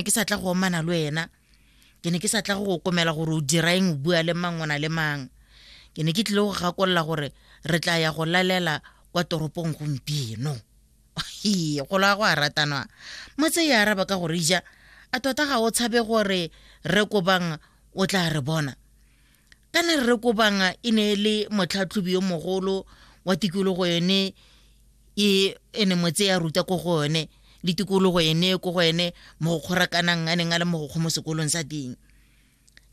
ne ke sa tla go omana le wena ke ne ke sa tla go go komela gore o dira eng o bua le mang o na le mang ke ne ke tlile go gakolola gore re tla ya go lalela kwa toropong gompieno Hee, golo a go a ratanwa motse e araba ka gore ija a tota ga o tshabe gore re kobang o tla re bona kana rre kobang e ne e le motlhatlhobi yo mogolo wa tikologo yone e ene motse ya ruta ko go yone le tikologo ene ko go ene mo go kgorakanang a neng a le mo go kgo mo sekolong sa teng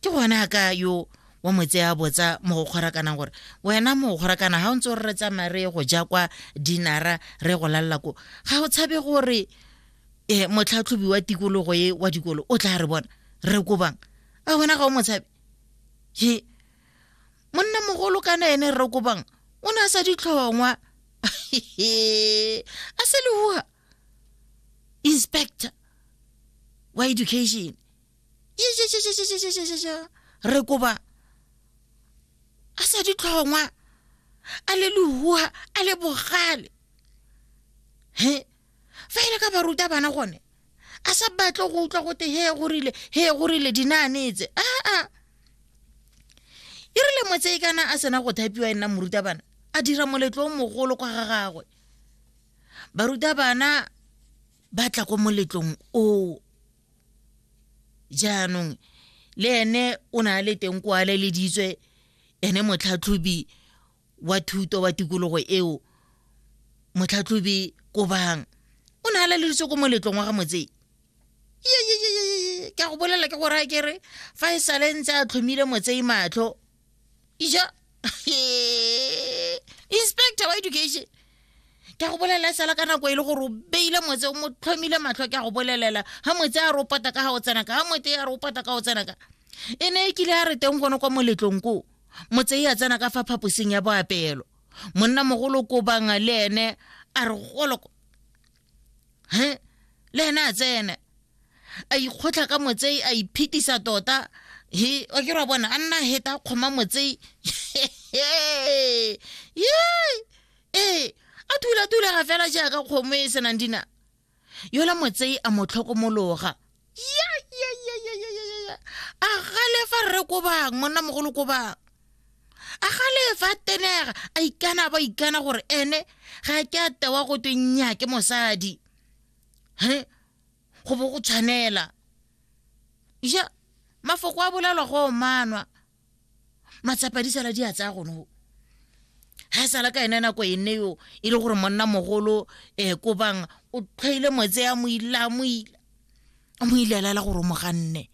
ke gone a ka yo wa motse ya botsa mo go kgorakanang gore wena mo go kgorakana ga o ntse o re tsamaya re go ja kwa dinara re go lalela ko ga o tshabe gore um motlhatlhobi wa tikologo e wa dikolo o tla re bona re kobang a wena ga o motshabe he monna mogolo kana ene rre kopang o ne a sa ditlhongwa a se lehuga inspector wa education re koba a sa ditlhongwa a le lehuha a le bogale he fa e le ka baruta bana gone a sa batle go utlwa gote he go rile he go rile dinaanetse aa e rile motse e kana a sena go thapiwa e nna morutabana a dira moletlo o mogolo kwa ga gagwe barutabana ba tla ko moletlong o jaanong le ene o ne a le teng kwa le leditswe ene motlhatlhobi wa thuto wa tikologo eo motlhatlhobi kobang o ne a laleleditse ko moletlong wa ga motsei ke a go bolela ke gore a kere fa e sale ntse a tlhomile motsei matlho ija inspector wa education ke a go bolelela e sala ka nako e le gore o beile motse o mo tlhomile matlho ke a go bolelela ga motse a re o pata ka ga o tsenaka ga mote a re o pata ka o tsenaka e ne e kile a re teng gone kwa moletlong koo motsei a tsena ka fa phaposing ya boapelo monna mogolo kobang le ene a re goloko he le ene a tsene a ikgotlha ka motsei a iphetisa tota he o ke ra bona a nna heta a kgoma motsei ee a thula-thula ga fela jaaka kgomo e senang dina yola motsei a mo tlhokomologa ya ya ya ya ya ya ya ya a galefa rre ko bang monna mogolo ko bang a galefa a tenega a ikana ba ikana gore ene ga ke a tewa go twe nya ke mosadi he go bo go tshwanela ja mafoko a bolalwa go manwa matsapa di sala di a tsaya gone go ga e sala ka ene nako e nne yo e le gore monna mogolo um eh, ko bang o tlhwaile moetse ya mo ile a mo ile a mo ilelela gore o mo ganne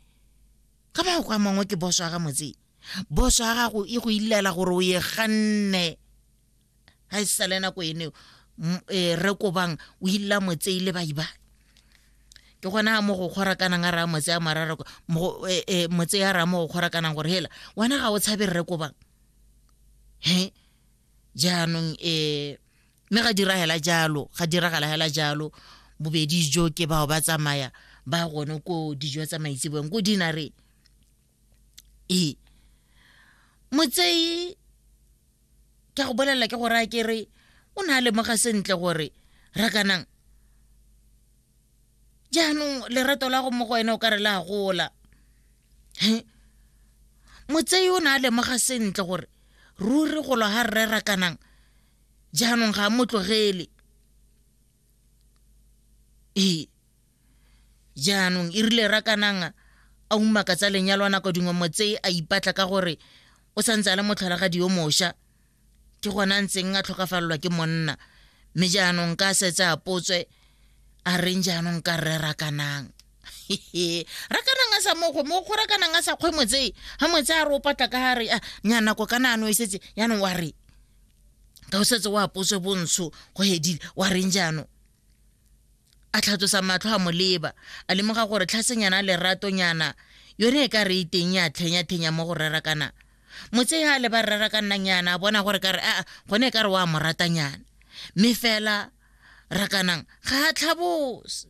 ka ba go kwa mangwe ke boso ga motseng boso ga gago e go ilela gore o ye ganne ga e sale nako ene e, re ko bang o illa motsei le baibai ke gona mo go kgora kanang a raya motse ya marara e, e, motse ya raya mo go kgora kanang gore hela wena ga o tshabe rre ko bang he jaanong um mme ga diragela jalo ga diragala hela jalo bobedi jo ke bao ba tsamaya ba gone ko dijo tsa maitsebong ko dinareng ee motsei ke go bolelela ke gore a ke re o ne a lemoga sentle gore rakanang jaanong lerato la go mo go wena o ka re la gola motsei o ne a lemoga sentle gore ruri golo ga rre rakanang jaanong ga a mo tlogele ee jaanong e rile rakanang a umaka tsa lenyalo a nako dingwe motse a ipatla ka gore o santse a le motlholagadi yo mošwa ke gona ntseng a tlhokafalelwa ke monna mme jaanong ka setse a potswe a reng jaanong ka rre rakanang rakanang a sa mokgwe mokgwe rakanang a sa kgwe motse ga motse a re o patla ka gare a ah, nya nako ka naano e setse yaanong wa re ka o setse o apotswe bontsho go hedile wa reng jaanong a tlhatlosa matlho a moleba a lemoga gore tlhasenyana leratonyana yone e ka re iteng ya tlhenyathenya mo go rerakana motse ya le ba rerakannang yana a bona gore kare aa gone e ka re wa mo ratanyana mme fela rakanang ga a tlhabose